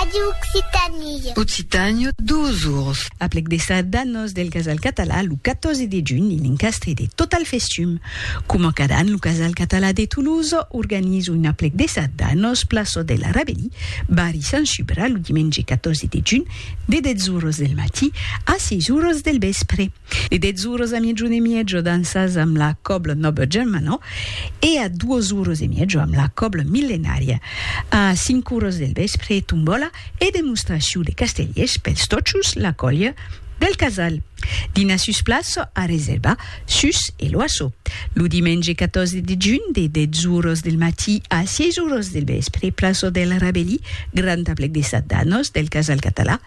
Radio Occitanie. Occitània, dos ors. Aplec de sardanos del Casal Català lo 14 de junh en encastre de Total Festum. Coma cada an, lo Casal Català de Toulouse organiza un aplec de sardanos plaça de la Rabelí, barri Sant Subra, lo dimenge 14 de junh, de 10 oras del matí a 6 oras del vèspre. E dètz oros a miejon e miejo dansas amb la còbla Noble Germanó e a duos oros e miejo amb la còbla Millenària. A cinc oros del vèspre, tombòla e demostracion de castellers pels tòchos la còlha del Casal. Dinar sus plaça a reservar sus e l'Oasso. Lo dimenge 14 de junh de dètz oros del matí a sièis oros del vèspre, plaça del Rabelí, grand aplec de Sat d'Anos del Casal Català,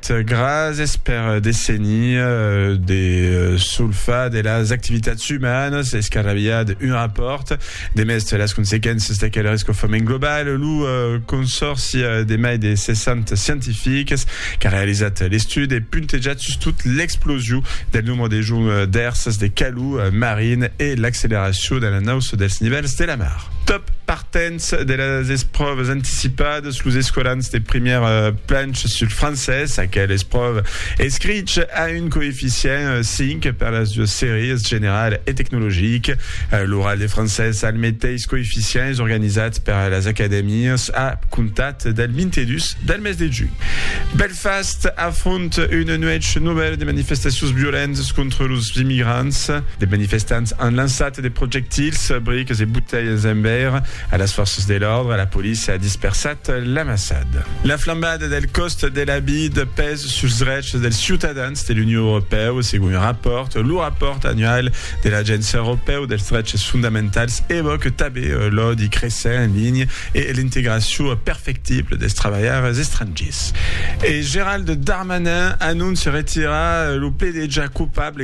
Gràcies per desenir de solfar de las activitats umanas escarrabilhar d'un rapòrt de mèste las consequéncias d'aquel rescofament global. Lo consòrci de mai de 60 scientifics qu'a realizat l'estudi e puntejat sustot l'explosion del nombre de joncs d'èrsas de calor marin e l'acceleracion de l'anauça dels nivèls de la mar. Dens de las espròvas anticipadas, los escolans de primièr planch sul francés, aquel espròva escrich a un coeficient 5 per las duas sèries, general e tecnologic. L'oral de francés al meteis coeficient es organizat per las acadèmias a comptat del 22 del mes de junh. Belfast afronta una nuèch novèla de manifestacions violentas contra los immigrants. De manifestants an lançat de projectils, briques e botelhas en veire a las fòrças de l'òrdre, la polícia a dispersat l'amassad. La flambada del còst de la vid pes suls drechs dels ciutadans de l'Union Europèu, segon un rapòrt. Lo rapòrt annual de l'Agéncia Europèu dels Dreches Fondamentals evòque tabé l'òdi cressent en linha e l'integracion perfectible dels trabalhaires estrangiers. E Gérald Darmanin anóncia retirar lo pledejar coupable